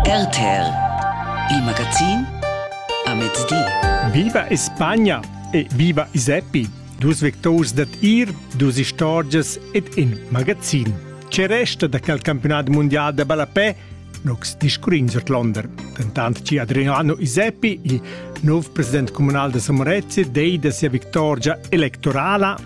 RTL, il magazin a mezdi. Viva Espagna e viva Iseppi! Dus victors dad ir, dus istorgias ed in magazin. Ce resta da quel campionat mondial da ballapè? Nox discurrins ord Londra. Dentant ci Adriano Iseppi, il nov president comunal da Samorezze, dei da sia victorgia electorala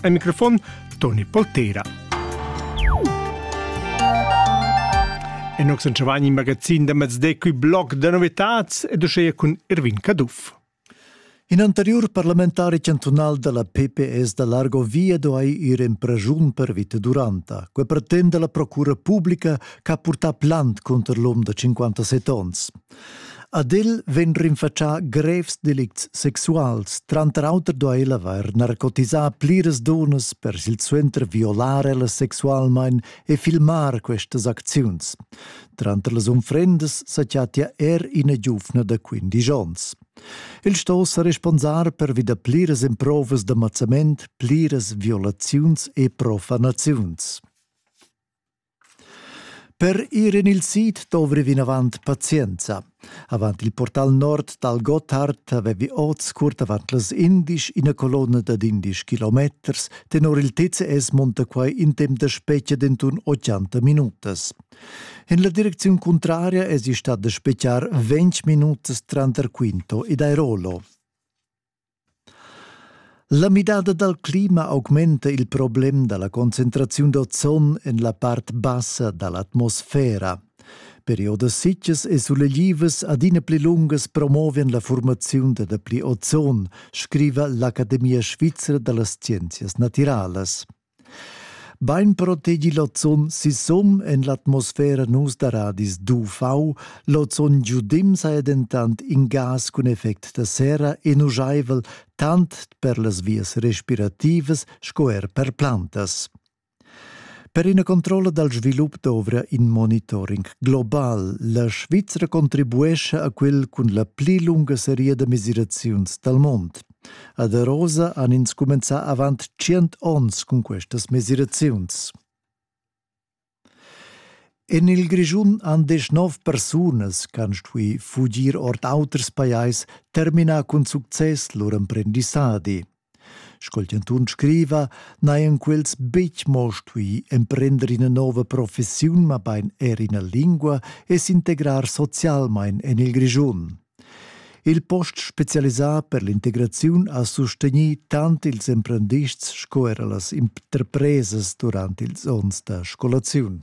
Al microfon Toni Poltera. E noi sono in magazin da mezde qui blog da novitats ed uscea cun Irvin Caduff. In anteriur parlamentari chantunal da la PPS da Largo Via duai ir en pragiun per vita duranta. Que pretende la procura pubblica che ha purtà plant conter l'om da 57 onns. Ad el vegn rinfatschà grevs delicts sexuals. Tranter auter do el avair narcotisà pliras dunnas per silsuenter violar ellas sexualmain e filmar questas acziuns. Tranter las unfrendas sa chattia er ina giuvna da 15 onns. El sto sa responsar per vi da pliras emprovas da mazzament, pliras violaziuns e profanaziuns. Per ir en il sid dovri vinavant pazienza. Avant il portal nord dal Gotthard avevi oz curt avant las indisch ina colonna dad indisch kilometers. Tenor il TCS monta quai in temp da spetga d'entun 80 minutas. En la direcziun cuntraria èsi stat da spetgar 20 minutas tranter Quinto ed Airolo. La midada dal clima augmenta il problem da la concentraziun d'ozon en la part bassa da l'atmosfera. Periodas sitgas e suleglivas adina pli lungas promovan la formaziun da dapli ozon, scriva l'Academia svizra da las scienzias natiralas. Bein protegi lozon sisum en l'atmosfera nus da radis d'UV, lozon giudim saja dentant in gas cun effect da serra e nujaivel tant per las vias respirativas sco er per plantas. Per ina controlla dal svilup dovra in monitoring global. La Svizzera contribuescha a quel cun la pli lunga seria da mesiraziuns dal mond. Ad Arosa han ins cumenzà avant tschient onns cun questas mesiraziuns. En il Grischun han deschnov persunas ch'han stuì fugir ord auters pajais terminà cun success lur emprendissadi. Sco il chantun scriva, n'hajan quels betg mo stuì emprender ina nova professiun, mabain er ina lingua e s'integrar socialmain en il Grischun. Il post specialisà per l'integraziun ha sustegnì tant ils emprendists sco era las interpresas durant ils onns da scolaziun.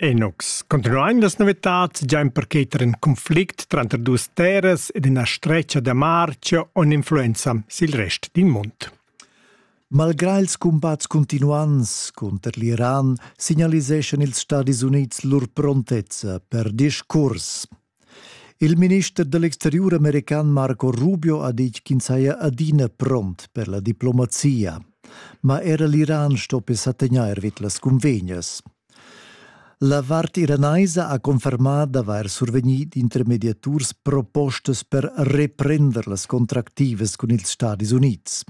Enox, continuain las novitads già in percheter in conflict tranter duas terras ed ina stretga da marcia on influenza sil rest din mund. Malgrà ils cumbats cuntinuants cunter l'Iran signaliseschan ils Stadis Unids lur prontezza per discurs. Il minister da l'exteriur american Marco Rubio ha ditg ch'ins haja adina pront per la diplomazia. Ma era l'Iran stoppi sa tegnair vid las cunvegnas. La vart iranaisa ha confermà d'avair survegnì d'intermediaturs propostas per reprender las contractivas cun ils Stadis Unids.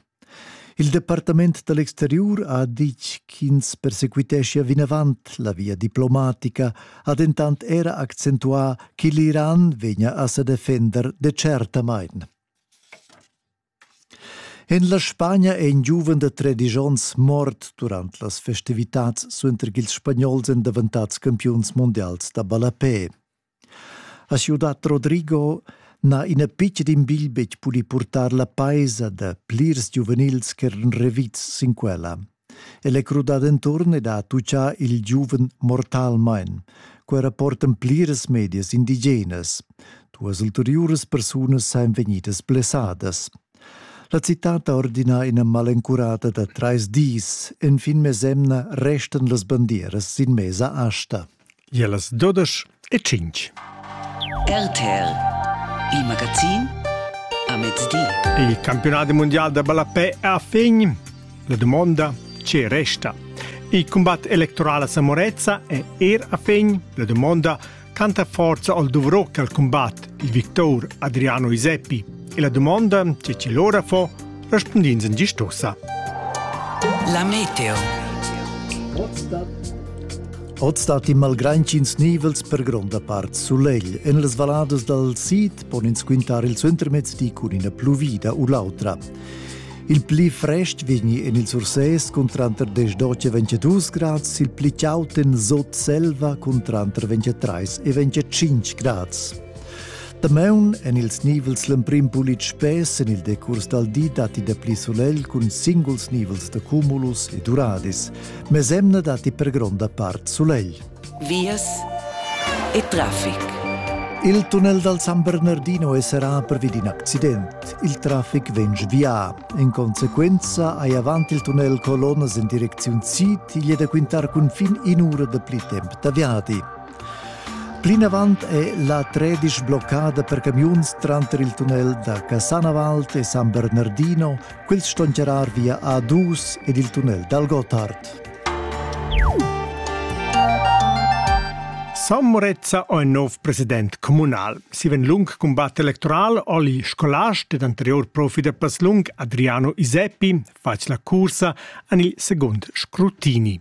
Il departament da l'exteriur ha ditg ch'ins persequiteschia vinavant la via diplomatica, ha dentant era accentuà che l'Iran vegnia a sa defender decertamain. En la Spagna è in giuven da 13 onns mort durant las festivitads suenter ch'ils spagnols èn daventads campiuns mundials da ballapè. A siu dat Rodrigo n'ha ina pitga d'imbil betg pudì purtar la paisa da plirs giuvenils ch'eran revids sin quella. El è crudà denturn ed ha tutgà il giuven mortalmain. Quei rapportan pliras medias indigenas. Duas ulteriuras persunas sain vegnidas blessadas. La citad ha ordinà ina malencurada da trais dis. Enfin mesemna restan las bandieras sin mesa asta. Ie las dudesch e tschinch. RTL Il magazin a mezdi. Il campionat mondial da ballapè è a fin. La dumonda che resta. Il combat electorale a Samorezza è er a fin. La dumonda canta forza al dovrò al combat il victor Adriano Iseppi. E la domanda che ci lora fa respondins in gistosa. La meteo. Oz stat in malgrantschins nivels per gronda part sulegl. En las valadas dal sid pon ins quintar il suentermezz di cun ina pluvida u l'autra. Il pli frest vegni en il Sursès cun tranter 10 e 22 grads, il pli chaud en Sot Selva cun tranter 23 e 25 grads. Damaun en ils nivels l'emprim pulit spess en il decurs dal di datti dapli sulegl cun singuls nivels da cumulus e duradis. Mesemna datti per gronda part sulegl. Vias e traffic. Il tunnel dal San Bernardino è serrà pervi d'in accident. Il traffic vegn svià. In conseguenza hai avant il tunnel colonnas en direcziun sid. Igl è da quintar cunfin in'ura da pli temp da viadi. Plinavant è la tredisch bloccada per camiuns tranter il tunnel da Cassanavalt e San Bernardino, quels ston charrar via A2 ed il tunnel dal Gotthard. San Morezza è il nov president communal. Si ven lung combatt electoral oli scolast ed anterior profi da Paslung Adriano Iseppi fac la cursa an il secund scrutini.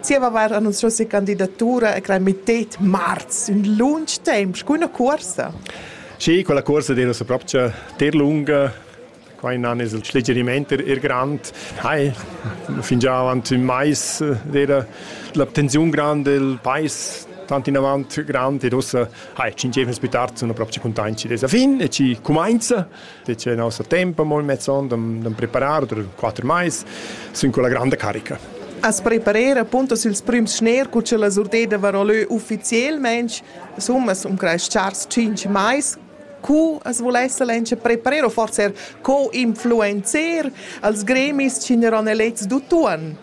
Zieva vair annunzchà sia candidatura e crai mittet marz, ün lunch temp, scu üna cuorsa. Sì, quella cuorsa deva sa propcha ter lunga, quai nan es il schlegerimaint er grand. Hai, fingià avant ün mais era l'abtenziun grand del pais tant inavant grand ed ussa hai, tschinchemas plü tard, sun propcha cuntaint chi desa fin e chi cumainza. C'è il nostro tempo mo mezzon da preparar per quattro mais sin quella grande carica. As preparer appunto sils prüms schner cu che la surdeda varò lö ufficielmente, summas um creis chars 5 mais, cu as volesse l'enche preparer o forse co influencer als gremis ci n'eron elets d'utuan.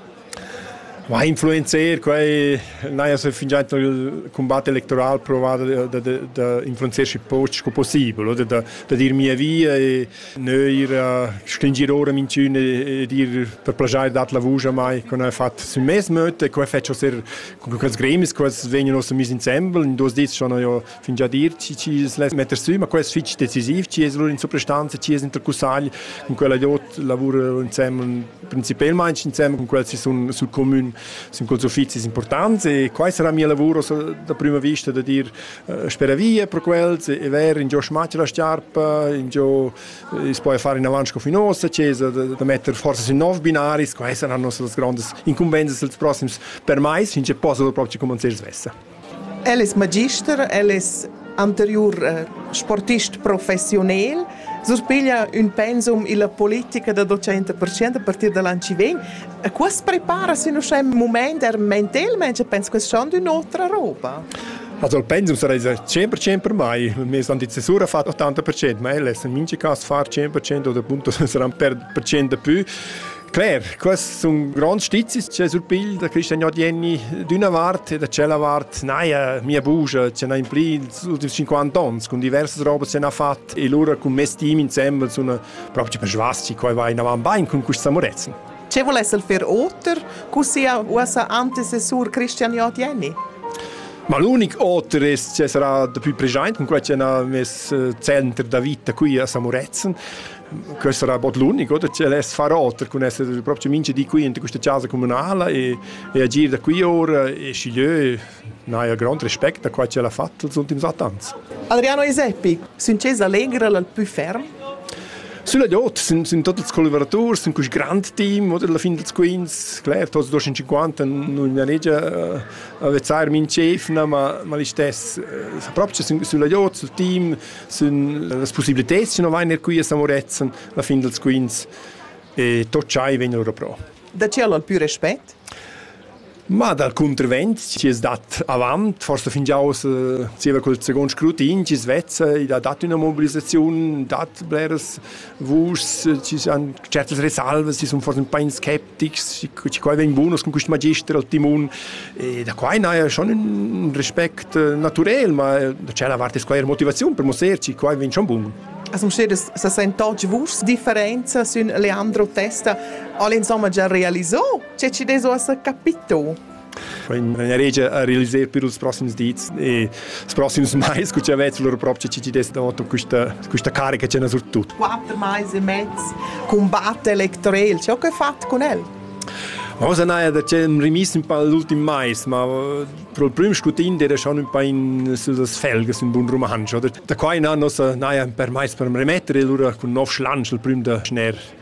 Ma ha influenzer quai n'haja se fingià il cumbat electoral provat da da da influenzer schi poch sco possibel oder da da dir mia via e neir stringir ora minchün e dir per plaschair dat la vusch a mai co n'ha fat sün mes möd e quai fetsch oser cun quels gremis, quels vegnan ossa mis insembel. In duos dis schon ho jo fingià dir chi es less metter sü, ma quai es fich decisiv, chi es lur in suprastanza, chi es intercussagl cun quella dot lavura insembel principelmaing insembel cun quels chi sun sul comün, sun culs uffizis importants e quai sarà mia lavur da prüma vista da dir eh, spera via per quels e ver ingio schmatsch la sciarpa, ingio eh, es poi far in avanti sco fin ossa, che es da metter forsa sün nov binaris, quai saran nossas grandes incumbenzas els prossims per mais, finché possa proprio cumanzir svessa. El es magister, el es anteriur eh, sportist professiunel, surpiglia ün pensum illa politica da 200% a partir da l'an chi vegn. E qua as prepara sin uschè ün mumaint er mentelmaing e pens che schand ün'otra roba. Also il pensum sarà 100% per mai, wir sind die Zäsur auf 80%, ma el es in minchi cas far 100% oder appunto saranno per percent de più Claire, quests sun gronds stizis che surpilda Christian Jodienni d'üna vart e da tschella vart naja, mia bugia c'è na impli ultims 50 ans con diversas robes se n'ha fat e lura con mes team insembel sun proprio per svasti qua vai inavan bain con questa amurezza. Ce volesse fer oter cu sia uossa antecessur Christian Jodienni? Ma l'unic oter è che sarà da più present con quella che ha messo eh, center da vita qui a Samuretzen. Questo era bod l'unic, oder? Che less far oter cun esser proprio mincha di qui in questa casa comunala e, e agir da qui ora e schiglieu n'haja grand respect a qua che l'ha fatto els ultims set ans. Adriano Eseppi, Sincesa Allegra l'al più ferm? Sulla Jot sind, sind tutti collaboratori, sind quest grande team, oder alla fine dels quints, claro, tots dos in 50 non ne negia avvezar min chef, ma ma l'i stess, proprio sulla Jot, sul team sind las possibilität non vain qui a Samoretzen la fin dels quins e tot chai vegn loro pro. Da chi al più respect? Ma dal contravent ci es dat avant, forse fingià aus eh, zieva col second scrutin, ci svezza, i ha dat una mobilizzazione, dat bleras vuschs, ci sono certe risalve, ci sono forse un po' in skep, che quai vegn bun con quist magister al timun e da quai n'haja schon ün respect eh, naturel ma da c'è la vart es quai er motivaziun per musserci quai vegn schon bun As musseres se sento che vus differenza sün Leandro Testa all insomma già realizzò, c'è ci deso a capito. Regia a realiser per ils proxims dis e ils proxims mais cu cha vezz lur propcha CCDS d'auto questa questa carica c'è surtut. Quatter mais e mezz combatte Electorel, ciò che fat con el? Rosa Naja da c'è rimis un po' l'ultim mais, ma pro il prim scutin era schon un po' in sus felges un bun romanzo. Da qua in anno sa Naja per mais per remettere e lura cun nov schlansch il prim da schner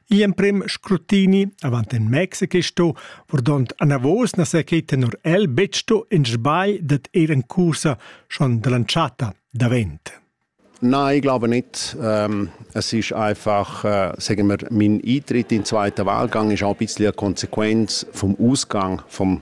Igl emprem scrutini avant en Mexico sto, verdont anavos na se che tenor el betg sto in sbagl dat er en cursa schon dell'entschatta davent. Nein, ich glaube nicht. Ähm, es ist einfach, äh, sagen wir, mein Eintritt in den zweiten Wahlgang ist auch ein bisschen eine Konsequenz vom Ausgang vom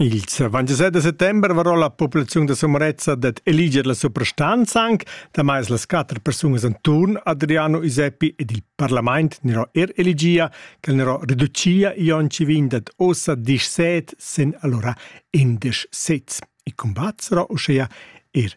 Il 27 da settember varò la populaziun da Sommerezza dad eliger la suprastanza anc, damai las quatter persunas inturn Adriano Iseppi ed il parlament n'ero er eligia, ch'el n'ero reducia Ionci vin dad ossa disch set sen allora indesch sez. I combat sarò uschea er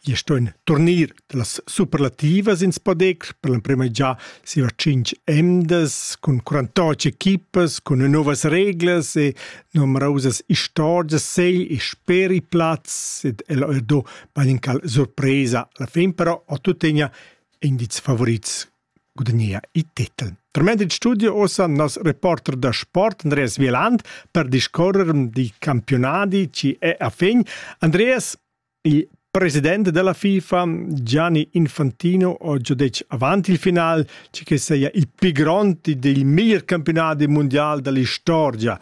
Gli stuein turnir las superlativas ins podec per l'emprema già siva cinc emdas cun 48 equipas cun novas reglas e numerosas istorgias sei e speri plaz ed el ho do baincal surpresa la fin però ho tuttegna indiz favorits gudagnea il titel. Tremend il studio ossa nos reporter da sport Andreas Wieland per discorrer di campionati ci è a fin. Andreas, Il president della FIFA Gianni Infantino ho già detg avant il final che que seia il più grond del miglior campionat mondial dell'istorgia.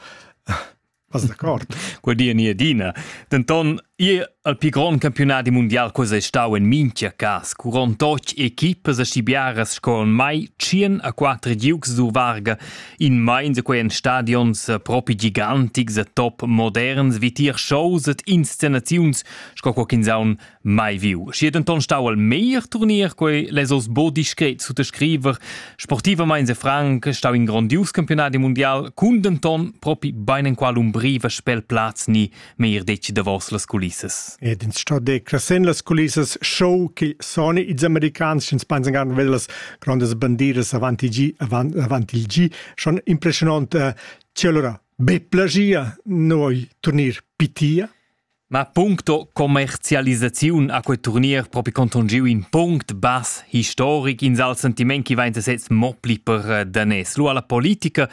Vas d'accord? Quel di ni adina. Denton, ia al più grond campionat mondial cosa è stau in minchia cas, cu rond och equipas a stibiaras sco mai 100 a 4 giugs dur varga In meins quei en stadions propi gigantics e top moderns vitier shows et inscenaziuns sco co ch'ins haun mai viu. Schi denton stau al meglier turnier quei les oss bo discret sut scriver sportivamain e franc stau in grondius campionat mundial cun denton propi bein enqual umbriva spel plaz ni meir detg davos las culissas. Ed ins sto de crescen las culissas show che soni ils americans ins pensan gar ved las grandes bandiras avanti gi avant avanti il gi schon impressionant uh, eh, allora be plagia noi turnir pitia Ma puncto commercialisaziun a quei turnier propi conton giu in punct bass historic in sal sentiment chi vain sez mo pli per eh, danes. Lu alla politica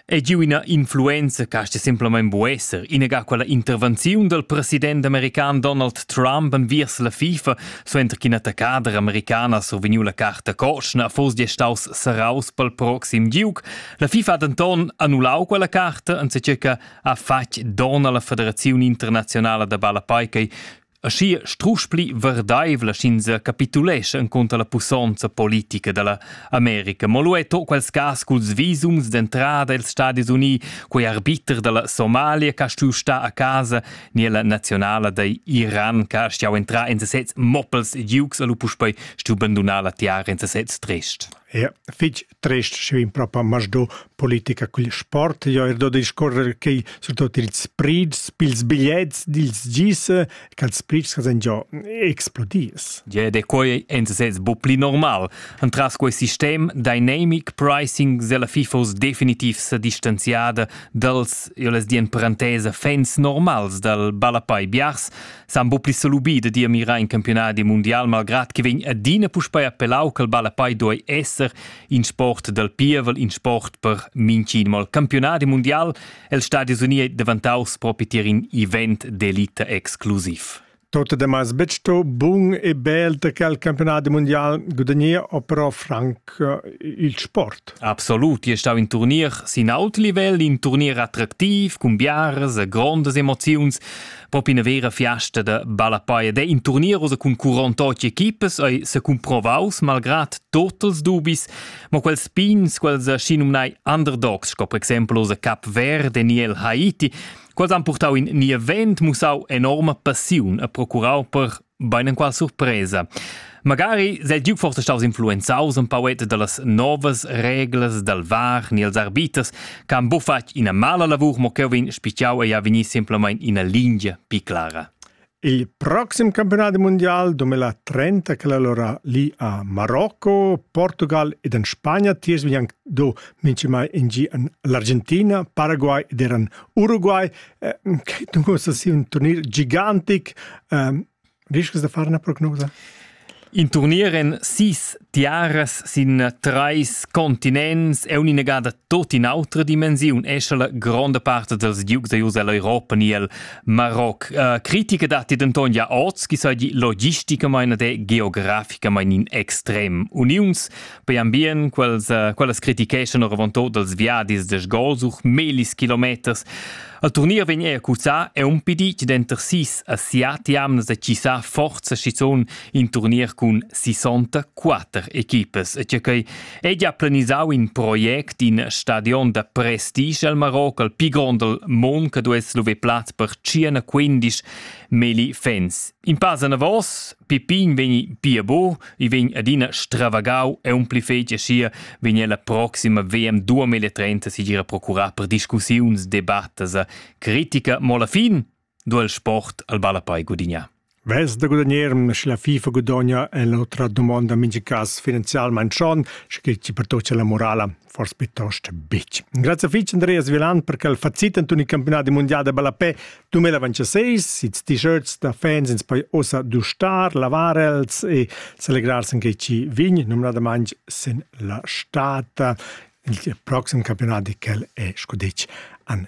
È giu ina influenza che sta semplamein bu esser, inaga quella intervenziun dal president american Donald Trump enviers la FIFA, suenter ch'ina attaccader americana survegniu la carta cotschna, foss staus serraus pel proxim giug. La FIFA ha denton annullau quella carta, anzichè che ha fatg don alla federaziun internazionala da balla paikai. Aschia strusch pli verdeivla sch'ins capitulescha encunter la pussonza politica dalla America. Mo lu è to quels cas culs visums d'entrada els Stadis Uni, quei arbiter dalla Somalia che ha stuiu star a casa ni la nazionala da Iran che ha stuiu entrar en sesez moppels e ducs e lu puspei stuiu bandunar la tiara en sesez trist. Ja, fitg trest schiu in propa masdo politica cugl sport jo er do discorrer che surtut ils sprids pils bigliets dils gise che els sprids che già explodis Ja de quei en sez bu pli normal entras quei sistem dynamic pricing sella FIFOs definitiv se distanziada dals io les dien parentesa fans normals dal Balapai Biars San bu pli salubì da dir mirar in campionadi mundial malgrad che vegn adina puspei appellau ch'el ballapei doi esser in sport dal pievel, in sport per mincin mal campionadi mundial, el Stadius Uni è devantaus propi tier in event d'elita exclusiv. Tot de mas betto bun e bel che al campionat mondial gudagnir o però franc eh, il sport. Absolut, je stau in turnier sin aut livel, in turnier attraktiv, cun biares e grondas emoziuns. Pop ina vera fiasta da ballapaia de in turnieros cun 48 equipas ei se cumprovaus malgrad totals dubis, ma quels pins quels schi numnai underdogs sco per esempio se Cap Verde ni el Haiti, quels han purtau in ni event mussau enorma passiun e procurau per Beinenqual surpresa. Magari sei Duke forse staus influenzaus un pauet dallas novas reglas dal var ni als arbiters che han bufatg ina mala lavur mo cheu vegn spitgiau e ha vegnì semplamein ina lingia pi clara. Il proxim campionat mondial 2030 che allora lì a Marocco, Portugal ed en Spagna tiers vegnan do minchimai in gi en l'Argentina, Paraguay ed eran Uruguay Che dunque uossa sia ün turnier gigantic. Ehm, riscas da far üna prognosa? In turnier en sis tiaras sin trais continents è un'inegada tot in autra dimensiun, esce la gronda parte dels ducs da Ius all'Europa ni al Maroc. Uh, critica datti denton ja oz, chi sai di logisticamain ed geograficamain in extrem. Uniuns Poi ambient, quels, uh, quellas criticheschan oravantod dals viadis de sgols uch melis kilometers. Al turnier vegner cuzzà è un pidit denter sis a siat jamnas da cissà forza schizon in turnier cun 64 equipes. E che quei è già planisau in project in stadion da prestige al Marocco, al pi grond del mon che dues love plaz per 15 meli fans In pass anavos, Pippin vegni pia bu, i vegn adina stravagau e un pli fetg sia vegn la proxima VM 2030 sigira procurar per discussiuns, debattas e critica, mo alla fin do il sport al ballapei gudignar. Vess da gudagnarm, sche la FIFA gudogna è l'otra domanda mingi cas finanzialment schon, sche che ci pertocca la morala. forse piuttosto bitch. Grazie fitch Andreas Vilan per quel facit ant un campionat mondial de ballapè 2026, sits t-shirts da fans ins poi osa dustar, lavar els e celebrar sen che ci vin, numnadamant sin la stata il proxim campionat di quel è scudic an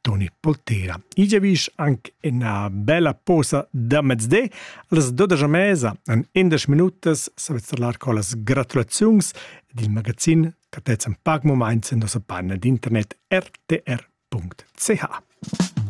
Toni Poltera. I giavisch anche una bella posa da mezde als 12 mesa en 11 minutas savezzalar con las gratulazions del magazin catezzen pac moment in nossa panna d'internet rtr.ch.